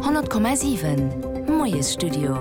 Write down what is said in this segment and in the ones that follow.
100,7 Moiesstudio.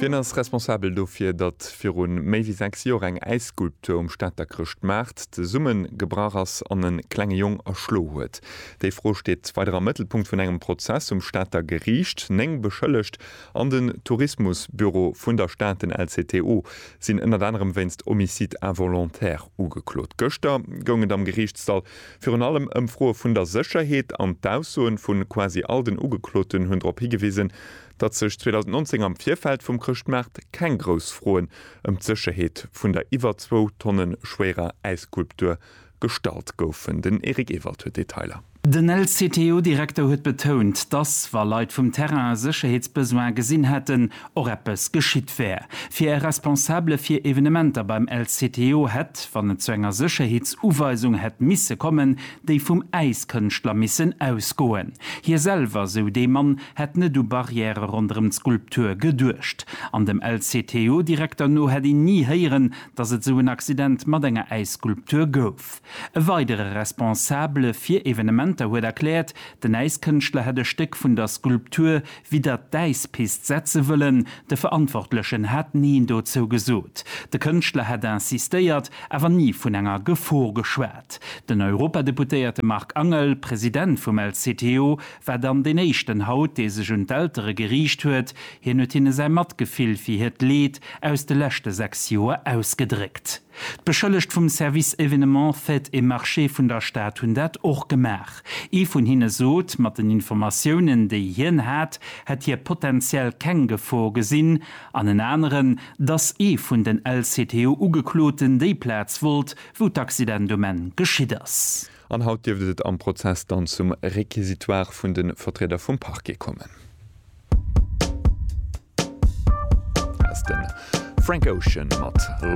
Wien ass responsabel dofir, datt viru méi wéi 6 Joer eng Äisskulptur um Stater Chrëschtmaart zesumme gebrach ass an e klenge Jong erschlo huet? Déi Fro steet weider am Mëttelpunkt vun engem Prozess um Stater Geriicht. Néng Beschëllegt an den Tourismusbüro vun der Stad, den LCTO, sinn ënnert anerem wéinst Homicide involontaire ugeklot. Gëschter goung et am Geriichtssall Virun allem Ëmfroe vun der Sécherheet an d'Aussoen vu quasi all den Ugekloten hunn drop higewisen, datt sech 2019 am Virfeld vum Chrëschtmaart keng grouss Froen ëm d'Sécherheet vun der iwwer zwou Tonne schwéierer Äisskulptur gestallt goufen. Den Eric Ewald huet Detailer. Den LCTU-Direkter huet betount, datt, wa Leit vum Terrain e Sécherheetsbesoin gesinn hätten, och eppes geschitt wär. Fir e Responsabele fir Evenementer beim LCTO hätt, wann et zu enger Sécherheetsuweisung hätt misse kommen, déi vum Äiskënschtler missen ausgoen. Hie selwer, sou dee Mann, hätt net u Barrièrë ronderëm d'Skulptur geduecht. An dem LCTO-Direkter no hätt een ni héieren, datt et esou en Accident mat enger Äisskulptur gouf. E weidere Responsabele fir Evenementer huet erkläert, den Äiskënschtler hätt e Stéck vun der Skulptur wéi dat d'Äispist setze wëllen, de Verantwortlechen hätt Neen dozou gesot. De Kënschtler hätt insistéiert, awer ni vun enger Gefor geschwat. Den Europadeputéierte Marc Angel, President vum LCTO, war dann deen éischten haut, dee sech un d'Eltere geriicht huet. Hien huet hinne säi Matgefill fir hiert Leed aus de leschte 6 Joer ausgedréckt. D'Beschëllegt vum Service Événements, Fêtes et Marchés vun der Stad hunn dat och gemaach. Ee vun hinne sot, mat den Informatiounen, déi hien hat, hätt hie potenziell keng Gefor gesinn, an en aneren, dass ee vun den LCTO-Ugekloten déi Plaz wollt, wou d'Accident um Enn geschitt ass. An haut dierft et am Prozess dann zum Réquisitoire vun de Vertrieder vum Parquet kommen. Hie war de Sänger vun Frank Ocean.